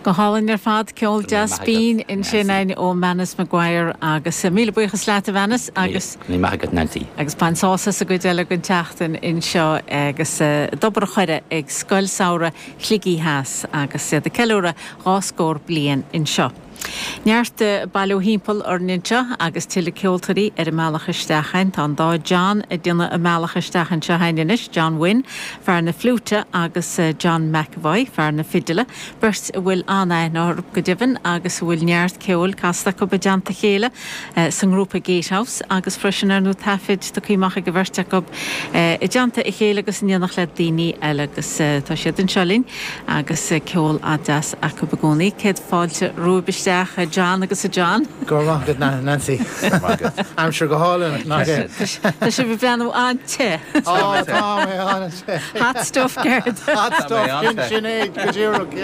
Go hálainn ar fad, ceol deas binn ansin ó Manus Maguire agus míle buíochas leat a Mhanus. Míle maith agat Nancy. Agus bain sás as an gcuid eile den tseachtain anseo agus d'obair a chuireadh ag Scoil Samhraidh Shligigh Theas agus iad ag ceiliúradh dhá scór bliain anseo. Neart bailiú thimpeall orainn anseo agus tuilleadh ceoltóirí ar a mbealach isteach a'inn. Tá an dá John a' déanamh a mbealach isteach anseo a'inn anois, John Wynne, fear na fliúite agus John McEvoy, fear na fidile, beirt a bhfuil an-aithne orthu go deimhin agus a bhfuil neart ceoil casta acu i dteannta a chéile. sa ngrúpa Gatehouse agus freisin ar ndóigh taifid tagtha amach ag an bheirt acu i dteannta a chéile agus in éineacht le daoine eile agus tá siad anseo linn agus ceol an-deas acu i gcónaí. Céad fáilte romhaibh isteach a John agus a John. Go raibh maith agat Nancy. Go raibh maith agat. Aimsir go hálainn nach ea? Tá sibh ag breathnú an-te. Tá mé te. Ó tá mé an-te. Hot stuff ceart? Hot stuff sin é go díreach.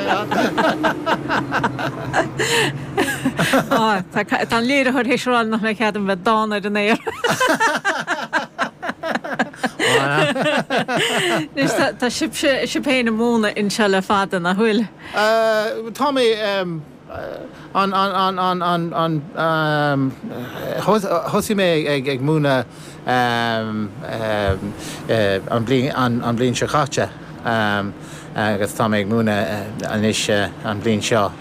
Tá an léiritheoir théis rá nach mbeidh cead agam bheith dána ar an aer! Anois tá sibhse, sibh féin, ag múineadh anseo le fada, nach bhfuil? Tá mé an, thosaigh mé ag múineadh an bhliain seo caite agus tá mé ag múineadh anois an bhliain seo.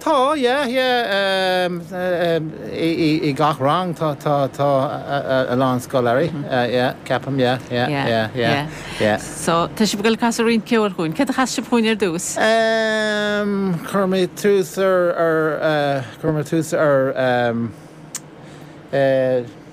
Tá, yeah, yeah, i gach rang tá a lán scoláirí, yeah, ceapaim, yeah, yeah, yeah, yeah, yeah. So, tá sibh ag dul ag casadh roinnt ceoil dhúinn. Céard a chasfaidh sibh dhúinn ar dtús? Chuir mé tús ar, chuir mé tús ar.